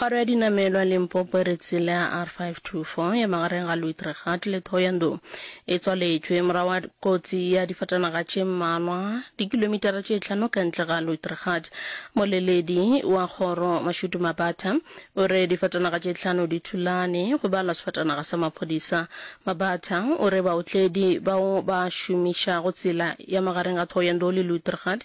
Kgoro ya dinamelwa Limpopo e re tsela ya R524 ya magareng ga Luitregat le Thohoyandou e tswaletšwe morago ga kotsi ya difatanaga tše mmalwa dikilomitara tše hlano ka ntle ga Luitregat. Moleledi wa kgoro Mashudu Mabata o re difatanaga tše hlano di thulane, go balwa sefatanaga sa maphodisa. Mabata o re baotledi bao ba šomišago tsela ya magareng ga Thohoyandou le Luitregat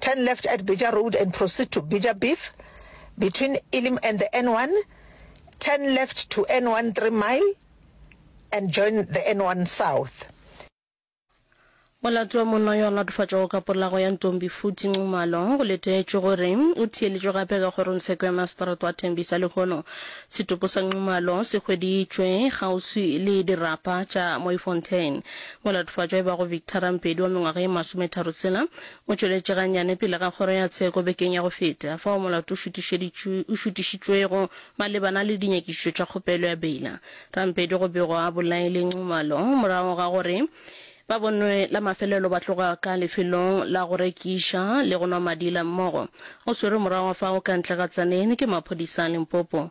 Turn left at Beja Road and proceed to Beja Beef between Elim and the N1. Turn left to N1 3 mile and join the N1 South. Molato wa monna yo a latofatšwago ka polago ya Ntombi Futhi Nxumalo go letetšwe gore o theeletšwe gape ka kgorongtsheko ya maseterata wa Tembisa lehono setopo sa Nxumalo se hweditšwe kgauswi le dirapa tša Mooifontein. Molatofatšwa e bago Victor Rampedi wa mengwaga ye masometharotshela o tšweletše gannyane pele ga kgoro ya tsheko bekeng ya go feta, fao molato o šutišeditšw o šutišitšwego malebana le dinyakišišo tša kgopelo ya beila. Rampedi go begwa a bolaile Nxumalo morago ga gore ba bonwe la mafelelo ba tloga ka lefelong la go rekiša le go nwa madila mmogo. O swerwe morago ga fao ka ntle ga Tzaneen ke maphodisa a Limpopo.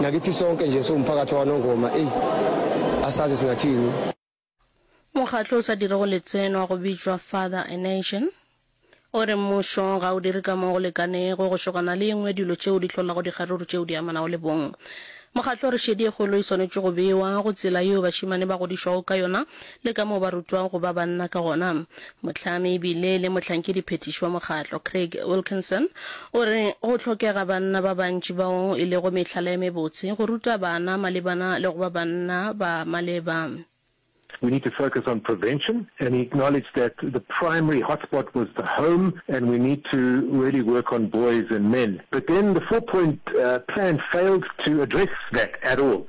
Nakithi sonke nje siwumphakathi wakwaNongoma eyi asazi singathini. Mokgatlo o sa dirego letseno wa go bitšwa Father a Nation o re mmušo ga o dire ka mo go lekanego go šokana le engwe dilo tšeo di hlolago dikgaruru tšeo di amanago le bong. Mokgatlo o re šedi e kgolo e swanetše go bewa go tsela yeo bašemane ba godišwago ka yona le ka moo ba rutwago go ba banna ka gona. Mohlami e bile le mohlankedi-phethiši wa mokgatlo, Craig Wilkinson, o re, Go hlokega banna ba bantši bao e lego mehlala e mebotse go ruta bana malebana le go ba banna ba maleba. We need to focus on prevention and he acknowledged that the primary hotspot was the home and we need to really work on boys and men. But then the four-point plan failed to address that at all.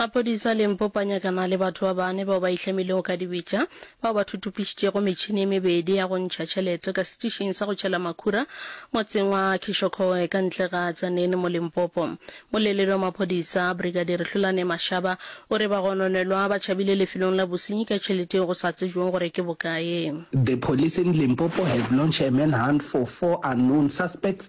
Maphodisa Limpopo a nyakana le batho ba bane bao ba ihlamilego ka dibetša bao ba thutupišitšego metšhini e mebedi ya go ntšha tšhelete ka setišing sa go tšhela makhura motseng wa Kishokhoe ka ntle ga Tzaneen mo Limpopo. Moleleli wa maphodisa, Brigadier Hlolane Mashaba, o re bagononelwa ba tšhabile lefelong la bosenyi ka tšhelete yeo go sa tsebjwego gore ke bokae. The police in Limpopo have launched a manhunt for four unknown suspects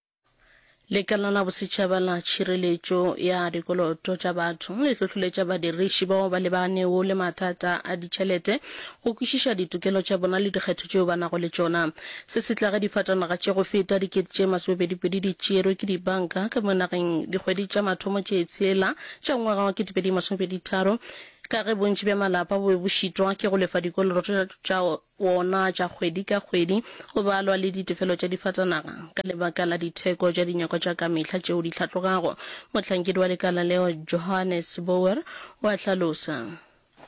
Lekala la Bosetšhaba la Tšhireletšo ya Dikoloto tša Batho le hlohloletša badiriši bao ba lebanego le mathata a ditšhelete go kwešiša ditokelo tša bona le dikgetho tšeo ba nago le tšona. Se se tla ge difatanaga tše go feta dikete tše masomepedipedi di tšerwe ke dibanka ka mo nageng dikgwedi tša mathomo tše tshela tša ngwaga wa ketepedi masomepeditharo ka ge bontši bja malapa bo be bo šitwa ke go lefa dikoloto tša wona tša kgwedi ka kgwedi go balwa le ditefelo tša difatanaga ka lebaka la ditheko tša dinyakwa tša ka mehla tšeo di hlatlogago, mohlankedi wa lekala leo Johannes Bouwer o a hlalosa.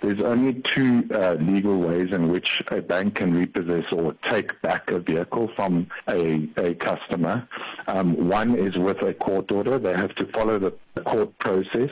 There's only two legal ways in which a bank can repossess or take back a vehicle from a a customer. One is with a court order, they have to follow the court process.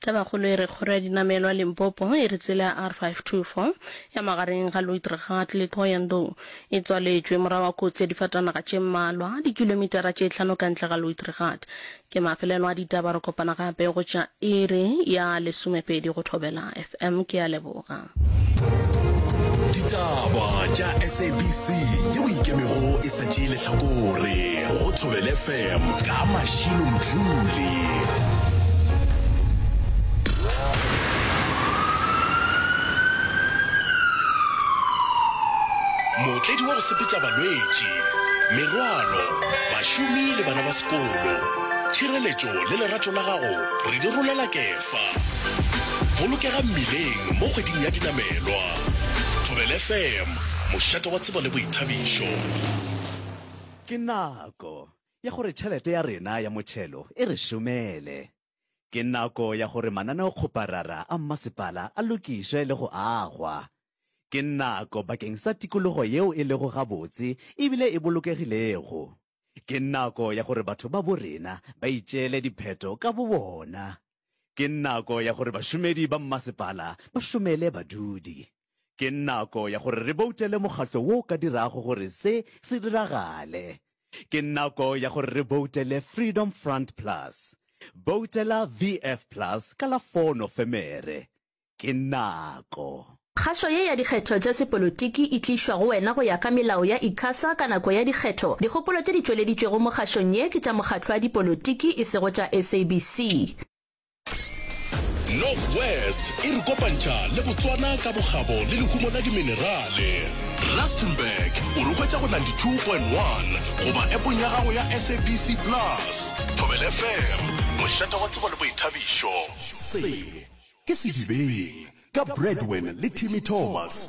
Tabakgolo e re kgoro ya dinamelwa Limpopo e re tsela ya R524 ya magareng ga Luitregard le Thohoyandou e tswaletšwe morago ga kotsi ya difatanaga tše mmalwa dikilomitara tše hlano ka ntle ga Luitregard. Ke mafelelo a ditaba re kopana gape go tša iri ya lesomepedi go thobela. Em, ke a leboga. Ditaba tša SABC yeo e ikemego e sa tšee lehlakore go Thobele FM ka Mashilo Mdluli. mootledi wa go sepetša balwetši, merwalo, bašomi le bana ba sekolo. Tšhireletšo le lerato la gago re di rolela kefo. Fa. Bolokega mmileng mo kgweding ya dinamelwa. Thobela FM, mošate wa tsebo le boithabišo. Ke nako ya gore tšhelete ya rena ya motšhelo e re šomele. Ke nako ya gore mananeokgoparara a mmasepala a lokišwe le go agwa. Ke nako bakeng sa tikologo yeo e lego gabotse e bile e bolokegilego. Ke nako ya gore batho babo rena ba itšeele dipheto ka bobona. Ke nako ya gore bašomedi ba mmasepala ba šomele badudi. Ke nako ya gore re boutele mokgatlo wo o ka dirago gore se se diragale. Ke nako ya gore re boutele Freedom Front Plus. Boutela VF Plus ka la 4 Nofemere. ke nako. Kgašo ye ya dikgetho tša sepolotiki e tlišwa go wena go ya ka melao ya Icasa ka nako ya dikgetho. Dikgopolo tše di tšweleditšwego mo kgašong ye ke tša mokgatlo wa dipolotiki e sego tša SABC. North West e re kopantšha le Botswana ka bokgabo le lehumo la diminerale. Rustenburg o re hwetša go 92.1 goba epong ya gago ya SABC Plus. Thobela FM, mošate wa tsebo le boithabišo. Se Ke Sedibeng ka Bradwen le Timmy Thomas.